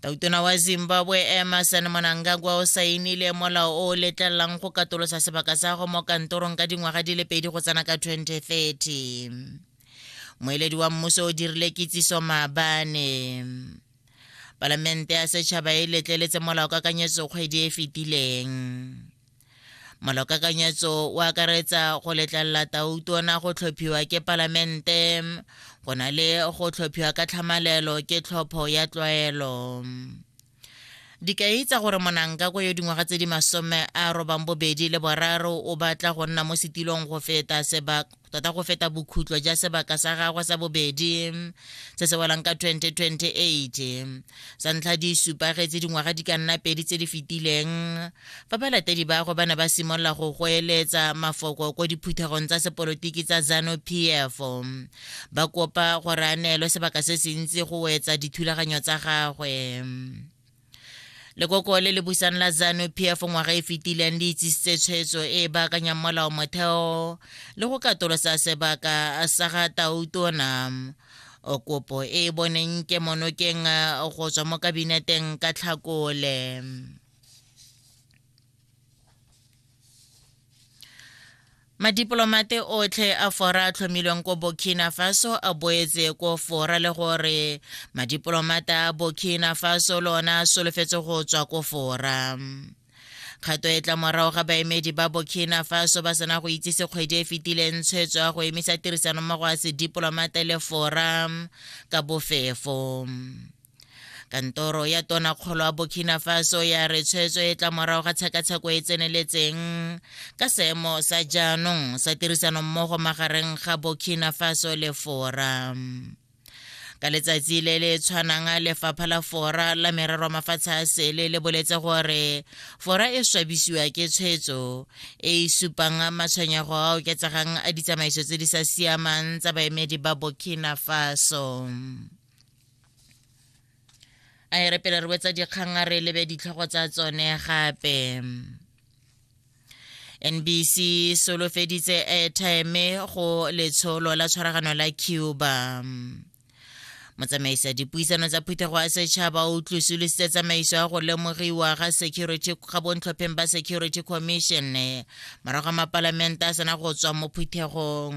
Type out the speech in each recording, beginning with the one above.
tautona wa zimbabwe emerson mwanangagwa o saenile molao o o letlelelang go katolosa sebaka sa go mo kantorong ka dingwaga di le pedi go tsena ka 2030 moeledi wa mmuso o dirile kitsiso maabane palamente ya setšhaba e letleletse molao kakanyetso kgwedi e fetileng Malokakanyetso o akaretsa go letlelela tautona go tlhophiwa ke palamente go na le go tlhophiwa ka tlhamalelo ke tlhopho ya tlwaelo. Dikai tsa gore Monangkakwe yo dingwaga tse di masome a robang bobedi le boraro o batla go nna mo setilong go feta sebaka tota go feta bokhutlo ja sebaka sa gagwe sa bobedi se se welang ka 2028 sa ntlha di supagetse dingwaga di ka nna pedi tse di fetileng fa balatedi ba gagwe ba ne ba simolola go goeletsa mafoko ko diphuthegong tsa sepolotiki tsa zano p f ba kopa gore a neelwe sebaka se se ntsi go wetsa dithulaganyo tsa gagwe lekoko le le busang la zanu pf ngwaga e fetileng le itsisitse tshwetso e e baakanyang molao motheo le go katolosa sebaka sa ga tautona kopo e e boneng ke monokeng go tswa mo kabineteng ka tlhakole madipolomate otlhe a fora a tlhomilweng ko burkina faso a boetse ko fora le gore madipolomata a burkina faso lona a solofetse go tswa ko fora kgato e tla morago ga baemedi ba burkina faso ba sena go itsise kgwedi e fetileng tshwetso ya go emisa tirisanommogo ya sedipolomata le fora ka bofefo kantoro ya tonakgolo ya burkina faso ya re tshwetso e tla morago ga tshekatsheko e tseneletseng ka seemo sa jaanong sa tirisanommogo magareng ga burkina faso le fora ka letsatsi le le tshwanang lefapha la fora la merero a mafatshe a sele le boletse gore fora e swabisiwa ke tshwetso e e supang matshwenyego a oketsegang a ditsamaiso tse di sa siamang tsa baemedi ba burkina faso a e re pele re wetsa dikgang a re lebe ditlhogo tsa tsone gape nbc solofeditse airtime go letsholo la tshwaragano la cuba motsamaisa dipuisano tsa phuthego ya setšhaba o tlosolositse tsamaiso ya go lemogiwa ga security ga bontlhopheng ba security commission morago ga mapalamente a sena go tswa mo phuthegong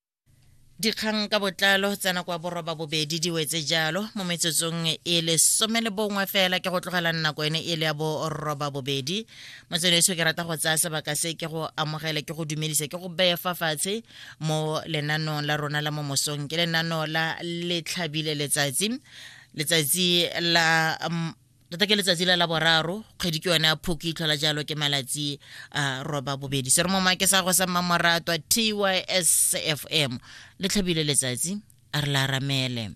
dikgang ka botlalo tsa nako ya boroba bobedi di wetse jalo mo metsotsong e le some le bongwe fela ke go tlogela nako ene e le ya boroba bobedi motswedi eso ke rata go tsaya sebaka se ke go amogele ke go dumedisa ke go beye fa fatshe mo lenanong la rona la mo mosong ke lenano la letlhabile letsatsi letsatsi la tota ke letsatsi la la boraro kgwedi ke yone ya phoki itlhola jalo ke malatsi a roba bobedi se re mo make sa go sa mmamoratwa tys f m le tlhabile letsatsi a re la ramele